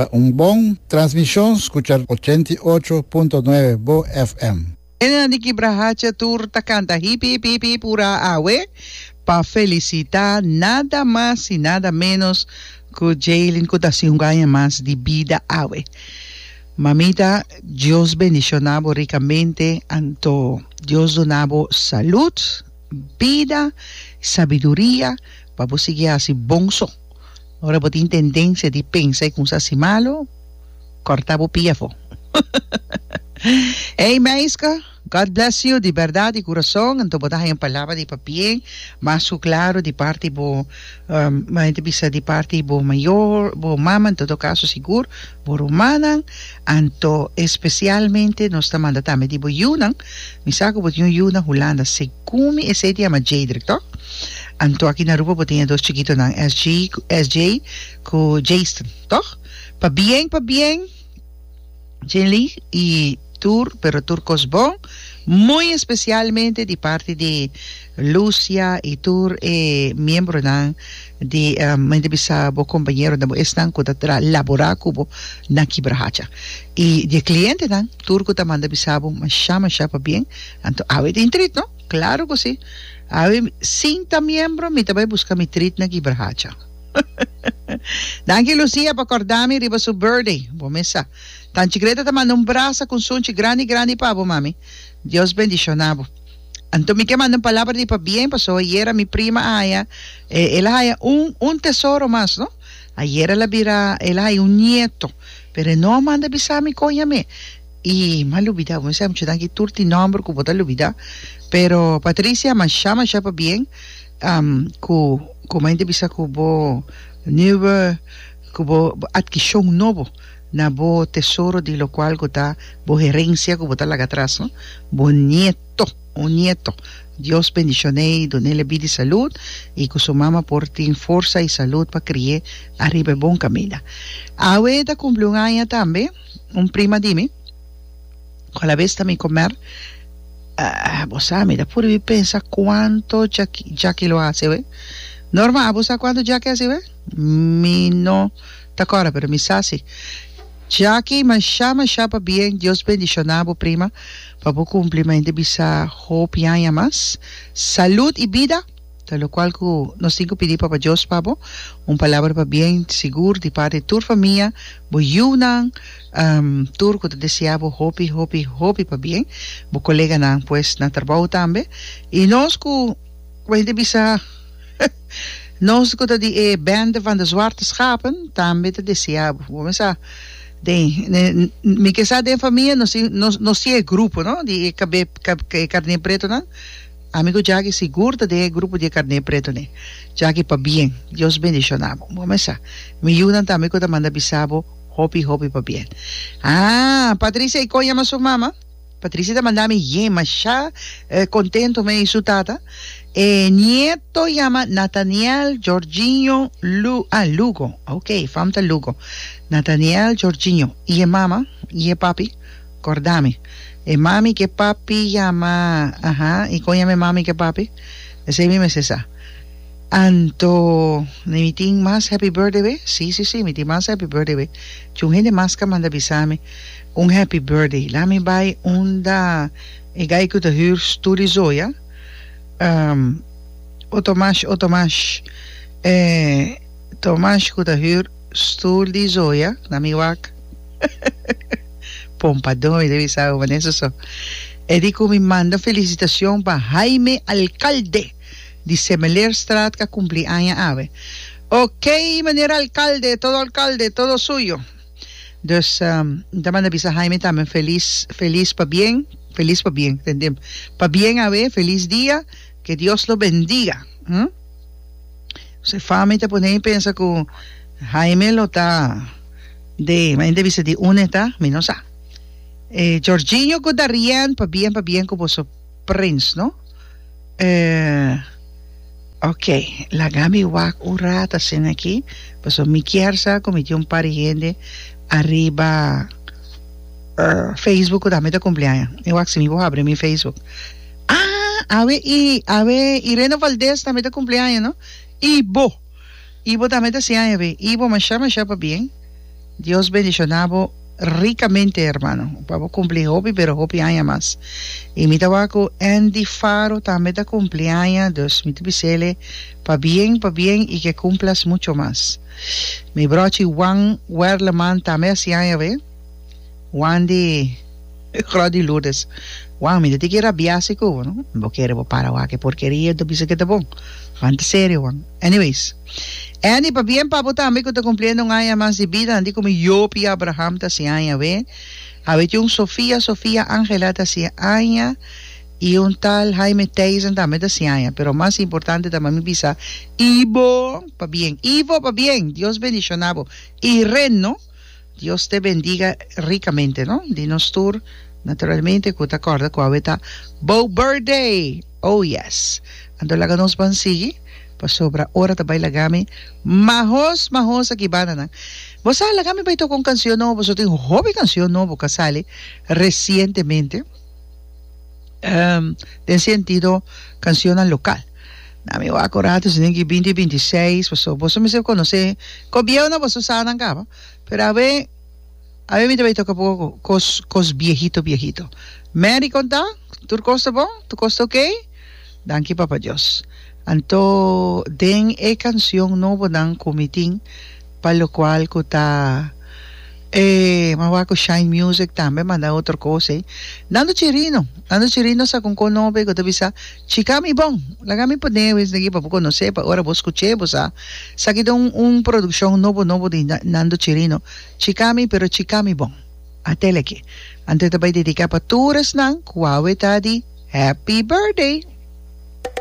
Pa un bon transmishon skucha ochenta i ocho punto nuebe bo FM. Nena di kibra hacha tur ta kanta hip hip hip hip hura awe pa felisita nada mas i nada menos ku Jaylin ku ta hasi un aña mas di bida awe. Mamita Dios bendiciona bo ricamente anto Dios duna bo salud, bida, sabiduria pa bo sigui haci bon so. Ora bo tin tendencia di pensa y cunsha haci malo, corta bo pia afo. Ey meisca. God bless you di berdad di curason anto bo ta haña palabra di papie mas cu claro di parti bo mi ta bisa di parti bo mayor bo mama en todo caso sigur bo rumannan anto especialmente nos ta manda tambe di bo yunan mi sa cu bo tin un yu na Hulanda segun mi esey ta yama Jedrick toh anto aki na Aruba bo ta ña dos chikitonan SJ cu Jason toh pa bien pa bien. Jilly y tur pero tur cos bon muy especialmente di parti di Lucia y tur e miembronan di mi ta bisa bo compañeronan bo esnan cu ta tra labora cu bo na kibra hacha y di e clientenan tur cu ta manda bisa bo masha masha pa bien anto awe tin treat no claro cu si awe sin ta miembro mi ta bay busca mi treat na kibra hacha. Danki Lucia pa cordami riba su birthday. Bo mesa. Tan chicleta ta manda un brasa cu un sunchi grandi grandi pa bo mami. Dios bendiciona bo. Anto mi ke manda un palabra di pabien paso ayera mi prima a haya e el a haya un un tesoro mas no. Ayera el a bira el a haya un nieto pero e no a manda bisami con yam'e y m'a lubida. Bo mesa mucho danki tur tin nomber cu bo ta lubida pero Patricia masha masha pabien. Ku komo hende bisa ku bo nuwe ku bo adkishon nobo na bo tesoro di lo kual ku ta bo herensia ku bo ta laga atras no bo nieto un nieto Dios bendishon'ei dun'el bid i salud i ku su mama por tin forsa i salud pa kri'é ariba e bon kaminda awe ta kumpli un aña tambe un prima di mi cu alabes ta mi comer, ah, bo sa mi ta puru di pensa cuanto Jac- Jackie lo haci awe. Norma, abo sa cuanto Jackie haci awe? Mi no ta corda pero mi sa si. Jackie, masha masha pa bien, Dios bendiciona bo prima pa bo cumpli mente bisa hopi aña mas. Salud y bida! Ta locual cu nos tin cu pidi Papa Dios pa bo, un palabra pa bien sigur di parti di tur famia, bo yiunan, tur cu ta desea bo hopi, hopi, hopi pa bien, bo coleganan pues na trabou tambe, y nos cu, cu e hende bisa, nos cu ta di e bende van de zwarte schapen, tambe ta desea bo. Bo mester sa den, mi ke sa den famia nos tin, nos tin e grupo, no, di e cabe, e carnepretonan. Ami ku Jaki sigur ta den e grupo di e karné pretoné. Jaki pabien. Dios bendishona bo. Bo mesa, mi yunan ta ami ku ta manda bisa bo hopi hopi pabien. Haa, Patricia i kon yama su mama? Patricia ta manda mi yen mashá kontentu mi i su tata. E nieto yama Nathaniel Jorginho Lu, ah, Lugo. Ok, e fam ta Lugo. Nathaniel Jorginho. I e mama i e papi? Corda mi. E mami cu e papi yama, aha, y con yama e mami cu e papi? Esey mi mester sa. Anto, ne mi tin mas happy birthday be? Si, si, si, mi tin mas happy birthday be. Tjun hende mas ca manda bisa mi un happy birthday. Laat mi bay unda e guy cu ta huur stoel di Zoya, ehm, o Tomas, o Tomas, eh, Tomas cu ta huur. Stoel di Zoya na mi wak. Pon pa domi de bisa abo maneso so. E di cu mi manda felicitacion pa Jaime Alcalde di Semeleerstraat ca cumpli aña awe. Ok meneer Alcalde todo Alcalde todo suyo. Dus N ta manda bisa Jaime tambe feliz feliz pa bien feliz pa bien tende pa bien awe feliz dia que Dios lo bendiga. Su fami ta pone mi pensa cu Jaime lo ta de mai ta bisa di une ta mi no sa. E Jorginho cu Darien pa bien pa bien cu boso prins no. Eh, ok laga mi wak un rato asina aki pasobra mi kier sa cu mi tin un par di hende ariba Facebook cu ta mi ta cumpleaña. Mi wak si mi por habri mi Facebook. Ah awe y awe y Reno Valdez tambe ta cumpli aña no y bo y bo tambe ta si aña be y bo masha masha pa bien Dios bendicionabo ricamente hermano pa bo cumpli hopi pero hopi aña mas y mi ta wak cu Andy Faro tambe ta cumpli aña dus mi ta bisele pa bien pa bien y ke cumplas mucho mas mi brochi Juan Werleman tambe a si aña be. Juan di Grot di Lourdes, Juan, mi ta tin ki rabia si ku bo, no? Mi bo kere bo para wak e porkeria i ta bisa ku e ta bon. Juan ta serio, Juan. Anyways, Annie, pa bien pa bo tambe ku ta kumpliendo un aña mas di bida, anti ku mi yopi Abraham ta hasi aña awe, awe tin un Sofia, Sofia Angela ta hasi aña i un tal Jaime Theisen tambe ta hasi aña, pero mas importante ta mami bisa Ivo pa bien. Ivo pa bien! Dios bendishona bo i ren, no? Dios te bendiga ricamente no di nos tur naturalmente cu ta corda cu awe ta bo birthday oh yes anto laga nos ban sigui pasobra ora ta bay lagami mahos mahos aki bananan bo sa lagami bay toca un cancion nobo pasobra tin hopi cancion nobo ca sali recientemente den sentido cancionnan local. Na mi wak un ratu esnan ki binti binti i seis paso boso mester a konosé ko bieu na boso sanan kaba pero a bai a bai mi ta bai toka poko ku kos kos biehito biehito Mary konta tur kos ta bon tur kos ta ok danki papa Dios anto den e kancion nobonan ku mi tin pa lo kual ku ta e mi a wak ku shine music tambe manda otro kos ei Nando Chirino Nando Chirino sa kon kon nobe ku ta bisa. Chica mi bon, laga mi pone wens aquí pa bo conoce, pa ora bo scuche bo sa sa ki ta un un produccion nobo nobo di Nando Chirino, chica mi pero chica mi bon. A tele aquí. Anto e ta bay dedica pa tur esnan cu awe ta di Happy Birthday.